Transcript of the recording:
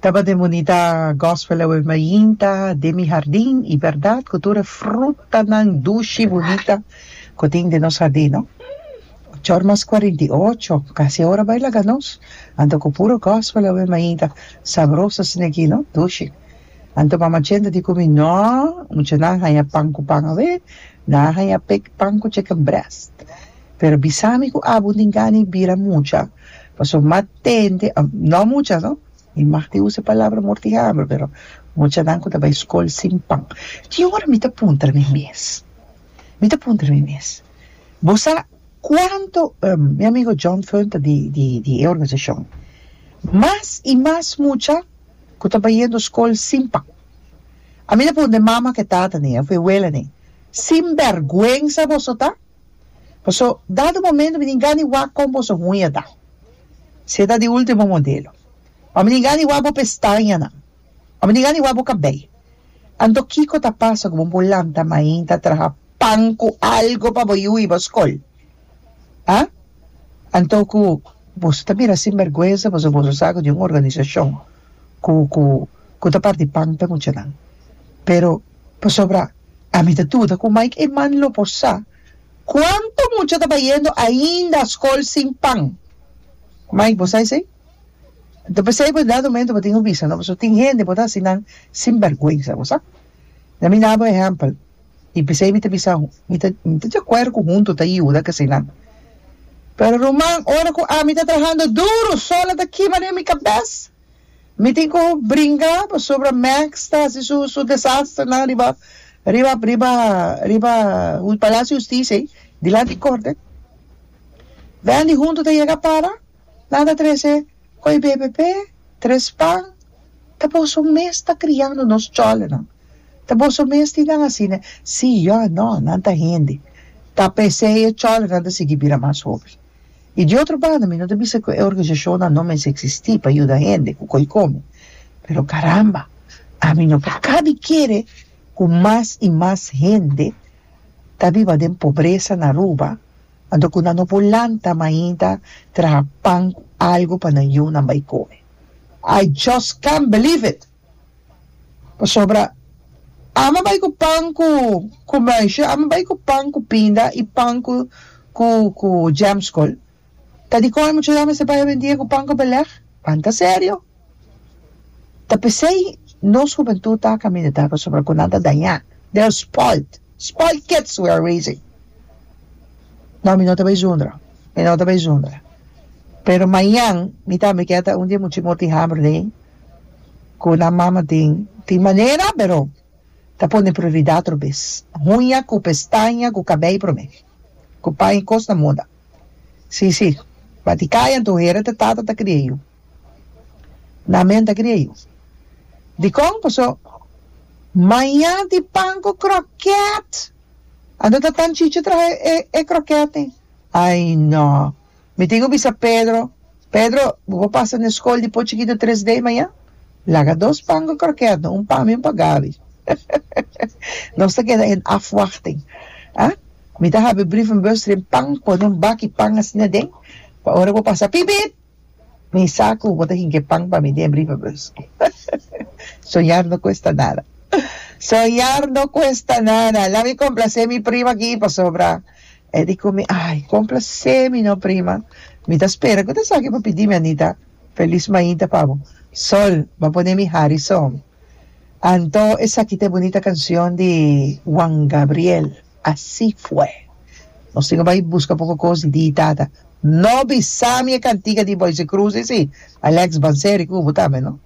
Tabata bonita gospel awe mainta den mi hardin y berdad cu tur e frutanan dushi bonita cu tin den nos hardin no ochor mas cuarenta y ocho casi e ora bay laga nos anto cu puro gospel awe mainta sabroso asina aki no dushi anto mama chenta di cu mi no mucha nan a haya pan cu pan awe nan a haya pan cu chicken breast pero bisa mi cu abo tin gana di bira mucha Paso mat tende, no mucha no, mi mag tin usa e palabra mor di hamber, pero muchanan cu ta bay scol sin pan. Tin un ora mi ta puntra mi mes, mi ta puntra mi mes, bo sa cuanto, mi amigo John Feun ta di di di e organisacion, mas y mas mucha cu ta bayendo scol sin pan. A mi ta puntra e mamanan cu e tatananan, afuer e welananan, sin bergüenza boso ta? Paso, dado momento mi tin gana wak con boso huñada, sea ta di ultimo modelo. O mi tin gana wak bo pestañanan. O mi tin gana wak bo cabey. Anto kico ta pasa cu bo por lanta mainta traha pan cu algo pa bo yu y bo scol? Haa? Anto cu boso ta mira sinbergüenza pasobos a sa cu tin un organisacion. ku ku ku ta parti pan p'e muchanan pero pasobra ami ta duda ku Mike e man lo por sa kuantu mucha ta bayendo ainda skol sin pan Mike bo sa esei? ta p'esei bo dado momento bo tin ku bisa no pasobra tin hende bo ta hasi nan sin bèrgwensa bo sa dami na bo ehèmpel. I p'esei mi ta bisa, Mi ta mi ta diakuerdo ku huntu ta yuda kasinan. Pero ruman, ora ku ami ta trahando duru, sol a ta kima riba mi kabes. Mi tin ku bringa pasobra Max ta hasi su su desasternan riba riba riba riba Palasio di Hustisia ei, dilanti di korte. Wendy huntu ta yega a para, nan ta trese. Koe BBP, Tres Pan, ta boso mes ta kriando nos cholonan? Ta boso mes tin nan asina? Sí, yo a no, nan ta hende. Ta p'esei e cholonan ta sigui bira mas hopi. I di otro banda mi no ta bisa ku e organisashonnan no mester eksistí pa yuda hende ku koe kome, pero karamba, ami no por kabi kere ku mas i mas hende ta biba den pobresa na Aruba, Anto ku nan no por lanta mainta traha pan ku algu pa nan yunan bai kome. I just can't believe it! Pasobra ame bai ku pan ku ku muisje, ame bai ku pan ku pinda i pan ku ku ku jam skol. Ta dikon e muchachnan mester bai a bendie ku pan ku belèg? Pan ta serio? Ta p'esei nos hubentud ta camineta pasobra cu nan ta dañá. They are spoilt. Spoilt kids we are raising. No, mi no ta bay zundra. Mi no ta bay zundra. Pero mañan mi tambe kier ta un di e much'i mor di hamber dei cu nan mama tin, tin manera, pero ta pone prioridad otro bez. Huña cu pestaña cu cabey prome. Cu paña y cos ta muda. Sí, sí. Baticaya en tu hera te tata ta cria yu. Na men ta kria yu. Dikon? Paso maña di pan ku krokèt. Anto ta tan chichi traha e e krokèt ei? Ai no. Mi tin ku bisa Pedro, Pedro, bo por pasa na e skol di por chikitu tres dei maña? Laga dos pan ku krokèt no, un pa mi un pa Gabi. Nos ta keda en afwachting. A Mi ta habri brievenbus tren pan, pone un baki pan asina den, pa ora bo pasa, pip pip! Mi sa cu bo ta hinke pan pa mi den brievenbus. Soñar no cuesta nada. Soñar no cuesta nada. Laat mi complace mi prima aki pasobra e di cu mi, ay, complace mi no prima. Mi ta spera cu ta esaki bo pidi mi, Anita. Feliz mainta pa bo. Sol, bo a pone mi Harrison. Anto esaki ta e bunita cancion di Juan Gabriel, Así fue. Nos tin cu bay busca poco cos di di tata. No bisami e cantiga di Boyse Cruz esi, Alex Banseri cu bo ta me no.